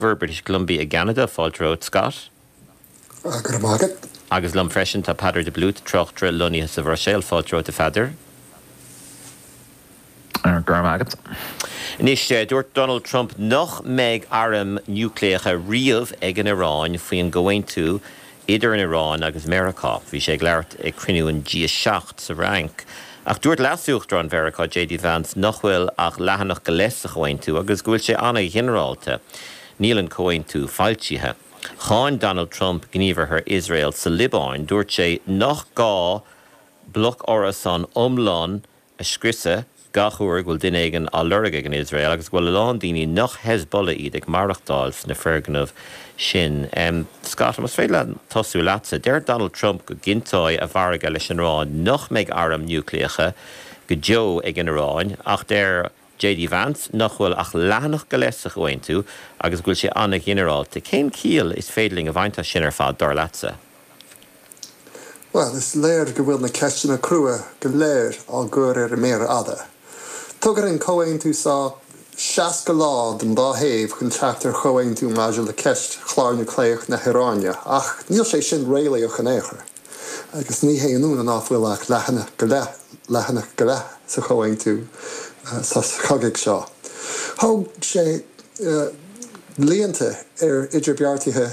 Bhur British Columbia i gCeanada, fáilte romhat, Scott. Go raibh maith agat. Agus liom freisin, tá Peadar de Blúit, tráchtaire, lonnaithe sa Bhruiséil, fáilte romhat, a Pheadair. Go raibh maith agat. Anois, dúirt Donald Trump nach mbeidh airm núicléacha riamh ag an Iaráin faoin gComhaontú Idir an Iráin agus Meiriceá, bhí sé ag labhairt ag cruinniú den G7 sa Fhrainc. Ach dúirt leasuachtarán Mheiriceá, JD Vance, nach bhfuil ach leathanach go leith sa chomhaontú agus go bhfuil sé an-ghinearálta. Níl an comhaontú foilsithe. Cháin Donald Trump gníomhartha Iosrael sa Liobáin. Dúirt sé nach gá bloc árasán iomlán a a scriosadh gach uair a bhfuil duine éigin á lorg ag an Iosrael agus go bhfuil a lán daoine nach Hezbollah iad ag maireachtáil sna foirgnimh sin. Scott, más féidir liom tosú leatsa. Deir Donald Trump go gcinnteoidh a mhargadh leis an Iráin nach mbeidh airm núicléacha go deo ag an Iráin ach deir an. JD Vance nach bhfuil ach leathanach go leith sa chomhaontú agus go bhfuil sé an-ghinearálta. Cén chiall is féidir linn a bhaint as sin ar fad, dar leatsa? Bhuel, is léir go bhfuil na ceisteanna crua go léir á gcur ar an méar fhada. Tugann an comhaontú so 60 lá don dá thaobh chun teacht ar chomhaontú maidir le ceist chlár núicléach na hIaráine ach níl sé sin réalaíoch in aon chor. agus ní haon ionadh ná fuil ach leathanach go leith, leathanach go leith sa chomhaontú sos cogaidh seo. Thóg sé blianta ar idirbheartaithe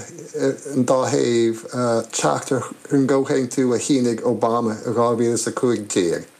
an dá thaobh teacht ar an gcomhaontú a shínigh Obama i 2015.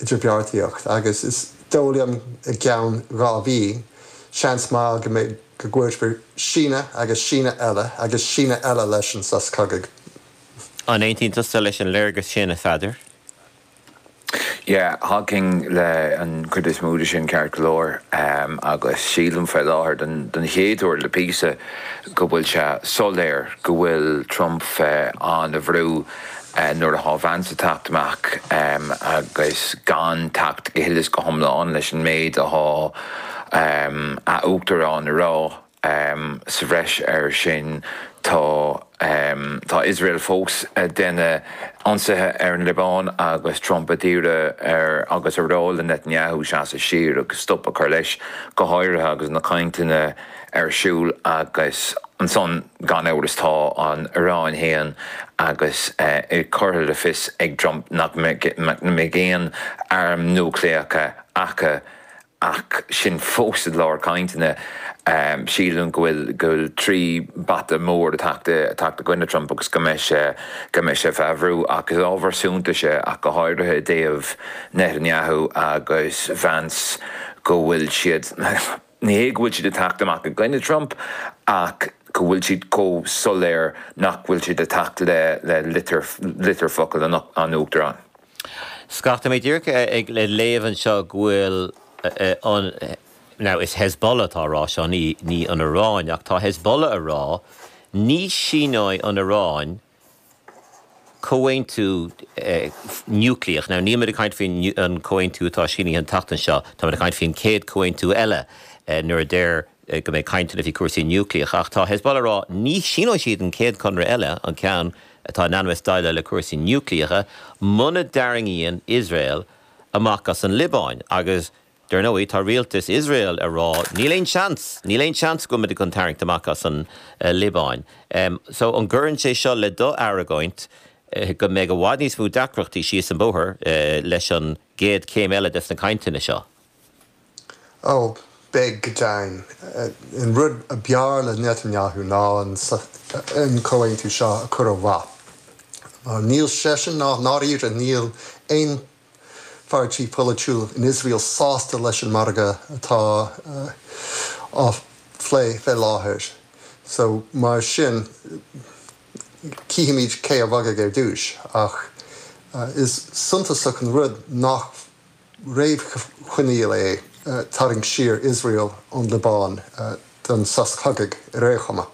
idirbheartaíocht, agus is dó' liom, i gceann dhá mhí, seans maith go mbeidh, go gcuirfear síneadh agus síneadh eile agus síneadh eile leis an sos cogaidh. An aontaíonn tusa leis an léargas sin, a Pheadair? Yeah, thagainn le an chuid is mó de sin ceart go leor, agus sílim fé láthair, don don chéad uair le píosa, go bhfuil sé soiléir go bhfuil Trump fé ana-bhrú, nuair a thá Vance ag teacht amach agus gan teacht go huile is go hiomlán leis an méid a thá a Uachtarán a rá sa bhreis air sin, tá Iosrael fós a' déanamh ionsaithe ar an Liobáin agus Trump a d'iarraidh air agus a rá le Netanyahu seasamh siar agus stop a chur leis go háirithe agus na cainteanna ar siúl agus ansan gan amhras tá an Iaráin fhéin agus é curtha in iúl ag Trump nach mbeidh aon airm núicléacha acu ach sinn fós i lár cainteanna. Sílim go bhfuil trí bata mór ag teacht i gcoinne Trump agus go mbeidh sé fé bhrú ach is ábhar suntais é ach go háirithe i dtaobh Netanyahu agus Vance go bhfuil siad, Ní hé go bhfuil siad ag teacht amach i gcoinne Trump ach go bhfuil siad chomh soiléir nach bhfuil siad ag teacht le litir focail an Uachtaráin. Scott, tá mé díreach ag léamh anseo go bhfuil, now is Hezbollah atá a rá seo, ní an Iaráin, ach tá Hezbollah a rá, ní shíneoidh an Iaráin, comhaontú núicléach. Now, níl muid ag caint faoi an comhaontú atá sínithe an tseachtain seo, tá muid ag caint faoi an chéad comhaontú eile, nuair a deirtear go mbeidh caint ann faoi cúrsaí núicléacha, ach tá Hezbollah ag rá ní shíneoidh siad an chéad chonradh eile, an ceann atá in ainm is déileáil le cúrsaí núicléacha, muna dtarraingíonn Iosrael amach as an Liobáin, agus Dar ndóigh, tá rialtas Iosrael ag rá, níl aon seans, níl aon seans go mbeidh muid chun tarraingt amach as an Liobáin. So, an gcuireann sé seo le do argóint go mbeidh i bhfad níos mó deacrachtaí síos an bóthar leis an gcéad chéim eile des na cainteanna seo? Ó, beidh, go deimhin. An rud a b'fhearr le Netanyahu ná an comhaontú seo a chur ó mhaith. Mar níl seisean, ná dáiríre níl aon pháirtí polaitiúil in Iosrael sásta leis an margadh atá á phlé fé láthair so mar sin cífimid cé a bhogfaidh ar dtúis ach is suntasach an rud nach réamhchoinníoll é tarraingt siar Iosrael ón Liobáin don sos chogaidh ar aon chuma.